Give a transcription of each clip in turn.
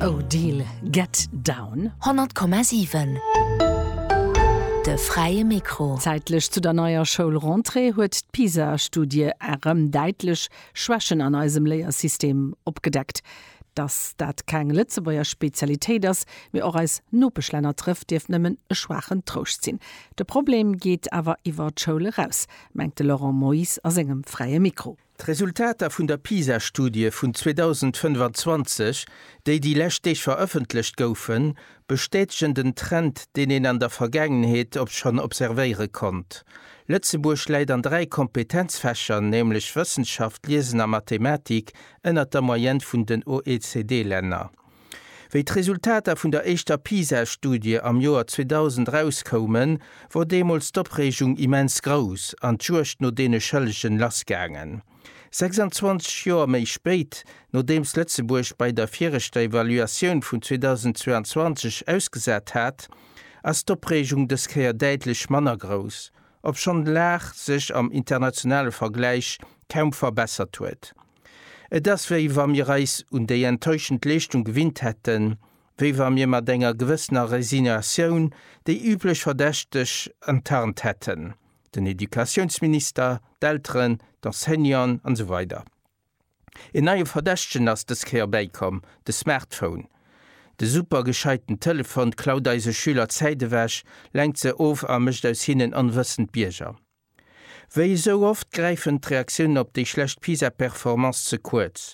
Odile, Get Down. 100,7 De fräie Mikro. Zäitlech zu der neier Schoulrentrée huet d'PISA-Studie erëm däitlech Schwächen an eisem Léiersystem opgedeckt. Dass dat keng Lëtzebuerger Spezialitéit ass, mee och eis Nopeschlänner trëfft, dierft nëmmen e schwaachen Trouscht sinn. De Problem geet awer iwwer d'Schoul eraus, mengt de Laurent Moyse a sengem fräie Mikro. D'Resultater vun der PISA-Studie vun 2025, déi déi lescht Deeg verëffentlecht goufen, bestätegen den Trend, deen een an der Vergaangenheet op schonn observéiere konnt, Lëtzebuerg läit an dräi Kompetenzfächer, nämlech Wëssenschaft, Liesen a Mathematik, ënnert der Moyenne vun den OECD-Länner. Wéi d'Resultater vun der éischter PISA-Studie am Joer 2000 erauskoumen, wor deemools d'Opreegung immens grouss an d'Juegd no deene Schëllegen lassgaangen. 26 Joer méi spéit, nodeems Lëtzebuerg bei der viregter Evaluatioun vun 2022 ausgesat hat, ass d'Opreegung dës Kéier däitlech manner grouss, obschonn d'Lag sech am internationale Vergläich kaum verbessert huet. Et ass wéi wa mir eis un déi enttäuschend Leeschtung gewinnt hätten, wéi wa mir mat enger gewëssener Resignatioun déi üblech Verdächteg enttarnt hätten, den Educatiounsminister, d'Elteren, d'Enseignanten an esou weider. Een neie Verdächtegen ass dës Kéier bäikomm, de Smartphone. De super gescheiten Telefon klaut eise Schüler d'Zäit ewech, lenkt se of a mécht aus hinnen onwëssend Bierger. Wéi esou oft gräifen d'Reaktiounen op déi schlecht PISA-Performance ze kuerz.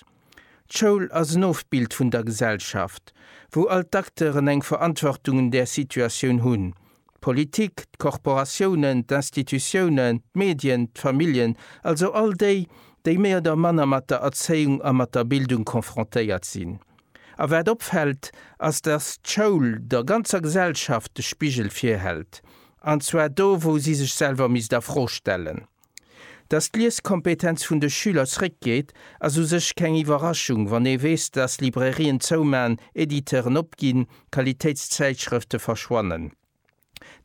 D'Schoul ass en Ofbild vun der Gesellschaft, wou all d'Acteuren eng Verantwortung un där Situatioun hunn, d'Politik, d'Korporatiounen, d'Institutiounen, d'Medien, d'Familljen, also all déi, déi méi oder manner mat der Erzéiung a mat der Bildung konfrontéiert sinn. A wat opfällt, ass dass d'Schoul der ganzer Gesellschaft de Spigel virhält, an zwar do wou si sech selwer misst a Fro stellen. Dass d'Lieskompetenz vun de Schüler zréckgeet ass u sech keng Iwwerraschung, wann ee weess dass Librairien zouman, Editeuren opginn, Qualitéitszäitschrëfte verschwannen.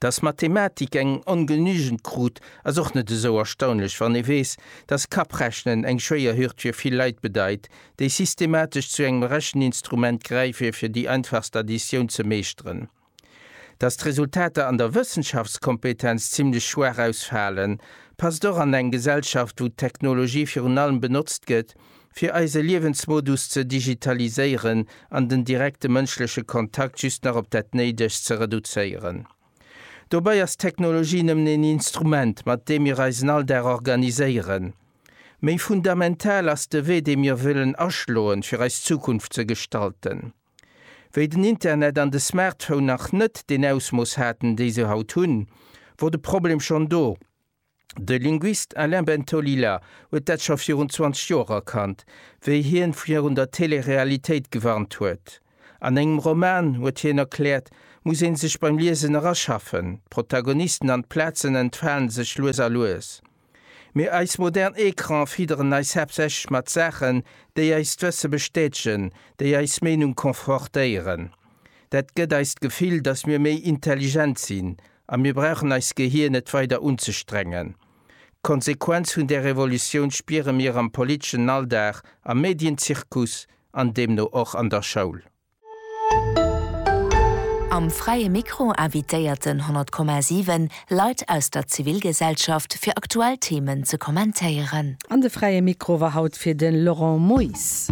Datt d'Mathematik eng ongenügend krut, ass och net esou erstaunlech, wann ee weess, datt Kapprechnen eng schwéier Hürd fir vill Leit bedeit, déi systematesch zu engem Recheninstrument gräife fir déi einfachst Additioun ze meeschteren. Datt d'Resultater an der Wëssenschaftskompetenz zimlech schwaach ausfalen, passt och an eng Gesellschaft, wou d'Technologie virun allem benotzt gëtt, fir eise Liewensmodus ze digitaliséieren an den direkte mënschleche Kontakt just nach op dat Néidegst ze reduzéieren. Dobäi ass d'Technologie nëmmen een Instrument, mat deem mir eisen Alldag organiséieren. Méi fundamental ass de Wee, dee mir wëllen aschloen, fir eis Zukunft ze gestalten. Wéi den Internet an de Smartphone nach net deen Ausmooss haten, déi se haut hunn, wor de Problem schonn do. De Linguist Alain Bentolila huet dat scho virun 20 Joer erkannt, wéi hien virun der Telerealitéit gewarnt huet. An engem Roman, huet hien erkläert, muss een sech beim Liesen eraschaffen. D'Protagonisten an d'Plazen entfalen sech lues a lues. Mee eis modern Ecrane fidderen eis haaptsächlech mat Saachen, déi eist Wësse bestätegen, déi eis Meenung confortéieren. Dat gëtt eis d'Gefill, datt mir méi intelligent sinn, A mir brauchen eist Gehir net weider unzestrengen. D'Konsequenz vun där Revolutioun spiere mir am politeschen Alldag, am Medienzirkus an deemno och an der Schoul. Am Fräie Mikro invitéiert den 100,7 Leit aus der Zivilgesellschaft, fir aktuell Themen ze kommentéieren. An de Fräie Mikro war haut fir de Laurent Moyse.